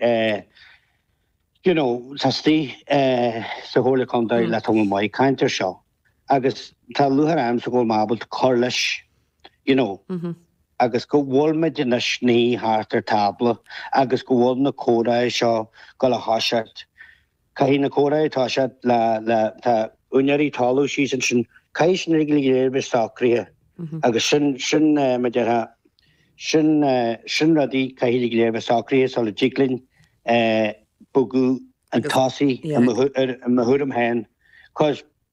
you know, tá istigh sa Chomhairle Contae le tamall maith caint air seo agus tá lúcháir ormsa go bhfuil mé ábalta cur leis, you know, agus go bhfuilmid inár suí thart ar tábla agus go bhfuil na comhrá seo ag gabháil a thoiseacht Caithfidh na comhrá atá sé le, le, tá úinéirí talaimh síos ansin, caithfidh sin uilig go léir a bheith socraithe agus sin, sin, mar a déarfá, sin, sin rudaí caithfidh uilig go léir a bheith socraithe sula dtig linn bogadh chun tosaigh, i mo thuairim féin, 'cause.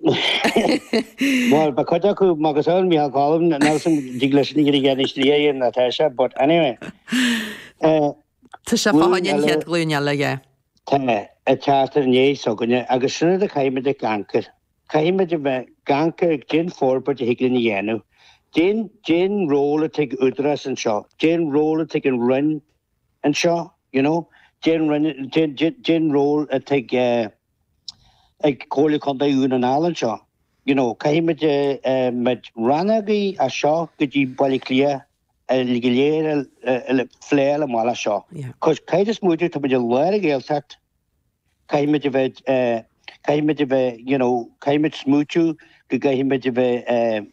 Bhuel, ba chuid acu, Marcus Owen, Micheál Colm, Nelson, Dick Liston, ní dhéanfaidh an slí a dhéanann na Taoisigh, but anyway. Tá sé fá choinne an chéad ghlúin eile, yeah. Tá, a chearta inné s'againne agus sin rud a chaithfimid ag amharc air. Caithfimid a bheith ag amharc ar caidé an forbairt a thig linn a dhéanamh. Caidé an, caidé an ról atá ag Údarás anseo, caidé an ról atá ag an Roinn anseo, you know, caidé an Roinn, caidé an, caidé an ról atá ag, eh, ag Comhairle Contae Dhún na nGall anseo. You know, caithfidh muid rannógaí as seo go dtí Baile Átha Cliath go léir a phlé le mhaith as seo. 'Cause caidé is móide táimid i lár an Ghaeltacht, caithfimid a bheith, caithfimid a bheith, you know, caithfimid smaoitiú go gcaithfimid a bheith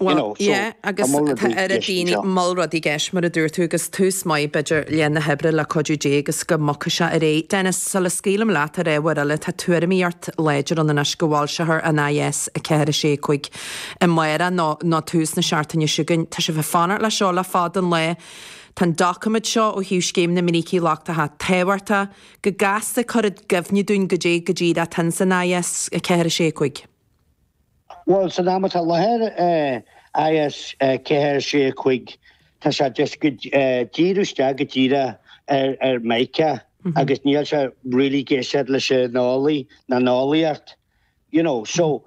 Bhuel, You know, so yeah, tá agus moll rudaí tá ar dheis daoine anseo. Moll rudaí i gceist, mar a dúirt tú, agus tús maith, b'fhéidir, leath na hoibre, le cuidiú Dé agus go mbogfaidh sé ar aghaidh. Dennis, sula scaoilim leat ar ábhar eile, tá tuairimíocht láidir ann anois go bhfoilseofar an IS 4, 6, 5 amárach nó nó tús na seachtaine seo chugainn. Tá sibh ag fanacht leis seo le fada an lae. Tá an doiciméad seo ó thaobh Scéim na mBrící Lochtacha tábhachtach go gasta cuir i gcuimhne dúinn goidé go díreach atá insan IS 4, 6, 5. Bhuel, san am atá i láthair, IS 4, 6, 5, tá sé just ag díriú isteach go díreach ar mica agus níl sé really ag éisteacht leis an eolaí ná an eolaíocht, you know, so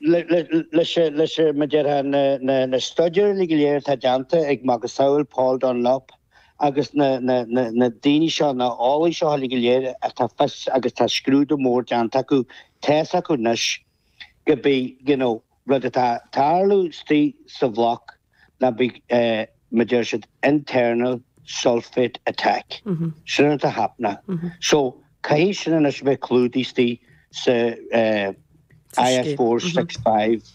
leis an, mar a déarfá, na studies uilig go léir atá déanta ag macasamhail Paul Dunlop, agus na daoine seo, na eolaithe seo uilig go léir atá fios agus tá scrúdú mór déanta acu, tá's acu anois gurb é you know rud atá ag tarlú istigh sa bhloc ná beidh mar a deir siad internal sulphate attack sin rud atá ag happenáil so caithfidh sin anois a bheith clúdaithe istigh sa IS four six five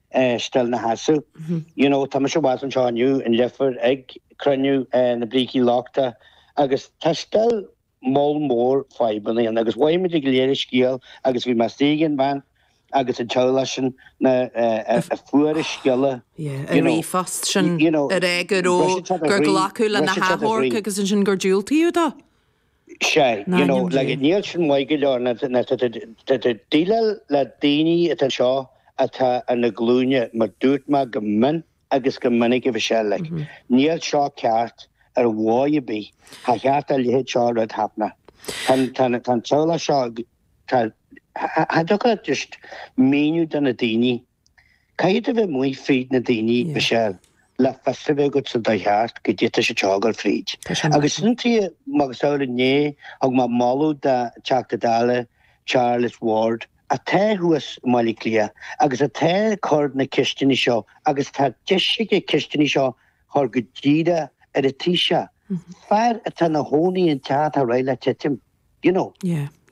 still ina sheasamh. You know, tá mise abhus anseo inniu in Leifear ag cruinniú na brící lochtach agus tá still moll mór fadhbanna ann agus beidh muid ag léiriú scéal agus bhí mé astaígh an bhean agus an teaghlach sin na a fuair an scéala, you know. Yeah, an ríomhphost sin a rá go raibh, gur glacadh lena hachomharc agus ansin gur diúltaíodh dó. sé. You know, like, níl sin maith go leor tá tú ag déileáil le daoine atá anseo atá ar a nglúine mar dúirt mé go mion agus go minic a bhí sé, like, níl seo ceart ar mhaith ar bith. Cha cheart a leithéid seo de rud taitneamh. Tá an teaghlach seo, tá, cha, cha, cha dtiocfadh leat just míniú do na daoine Caithfidh tú a bheith amuigh fríd na daoine, Michelle, le fios a bheith agat sa dóigh cheart goidé atá siad ag gabháil fríd. Agus sin tuige mar gheall ar inné thug mé moladh do Teachta Dála Charles Ward atá thuas i mBaile Átha Cliath agus atá ag cur na ceisteanna seo agus tá deis aige na ceisteanna seo a chur go díreach ar an Taoiseach, fear atá ina chónaí i dteach atá réidh le titim, you know.